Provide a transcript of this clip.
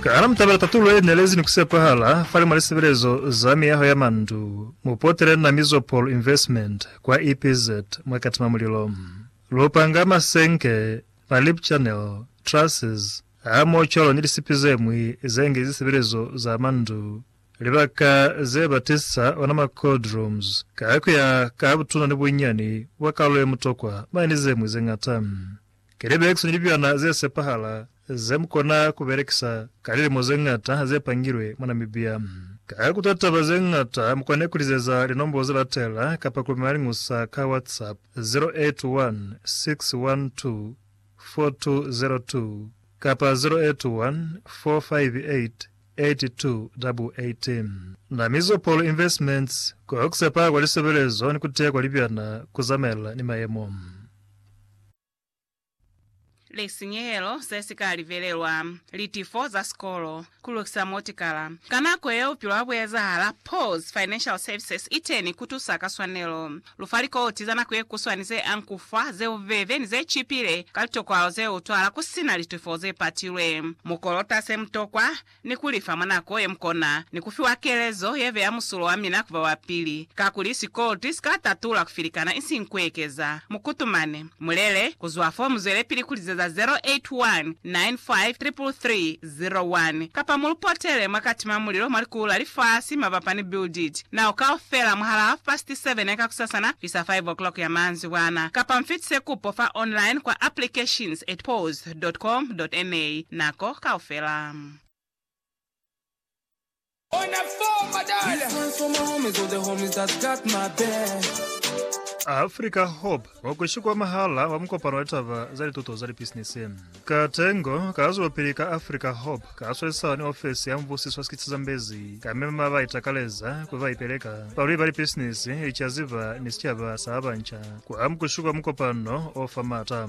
Kana mu tabela tatulo ye nelezi ni ku sepahala fale mwa lisebelezo za miyaho ya mandu? Mu potele na Mizopol Investment kwa EPZ mwa Katima Mulilo. Lu panga masenke, ma lip channel, trusses, hamoho cwalo ni lisipi ze ñwi ze ngi zisebelezo za mandu, libaka ze ba tisa ona ma cold rooms, ka ku ya ka butuna ni bunyani bwa kalulo ye mutokwa, mane ni ze ñwi ze ñata. Kelebeks ni lipilana ze sepahala ze mu kona ku belekisa ka lilimo ze ñata ha ze pangilwe mwa Namibia. Ka kuta taba ze ñata, mu kone ku lizeza linombolo ze latela kapa ku lumela liñusa ka WhatsApp, 0816124202 kapa 0814588288. Namizo Paul Investments, Ko ku sepahala kwa lisebelezo ni ku teya kwa lipilana ku zamaelana ni mayemo. lisinyehelo se si ka livelelwa, litifo za sikolo, ku lukisa motikala. Ka nako yeo bupilo ha bu ezahala. Paul's Financial Services i teni ku tusa ka swanelo. Lu fa likoti za nako ye kuswani ze ang ku fa, ze bubebe, ni ze cipile ka litokwalo ze utwala ku si na litifo ze patilwe. Mu kolota se mu tokwa. ni ku lifa mwa nako ye mukona, ni ku fiwa kelezo ye beya musulo wa mina ku ba wa pili, kakuli sikolti si ka tatula ku filikana isiñi ku ekeza. Mu kutumane. Mu lele, ku zwa fo mu zwelepili ku lizeza 0819533301, kapa mu lu potele mwa katima mulilo mwa likulu la lifasi mabapa ni Build It Now kaufela mwahal'a half past seven ya kakusasana fisa five o'clock ya manzibwana, kapa mu fitise kupo fa online kwa applications at pause. www.com.ma nako kaufela. Africa Hub, mukweshi kwa mahala wa mukopano wa litaba za lituto za lipisinisi. Katengo ka zwelopili ka Africa Hub ka swesisana ni ofesi ya mubusiso wa sikitsi Zambezi ka mema ba itakaleza kuli ba ipeleka, balwi ba lipisinisi, licaziba ni sicaba sa ba banca kwa mukweshi kwa mukopano o fa maata.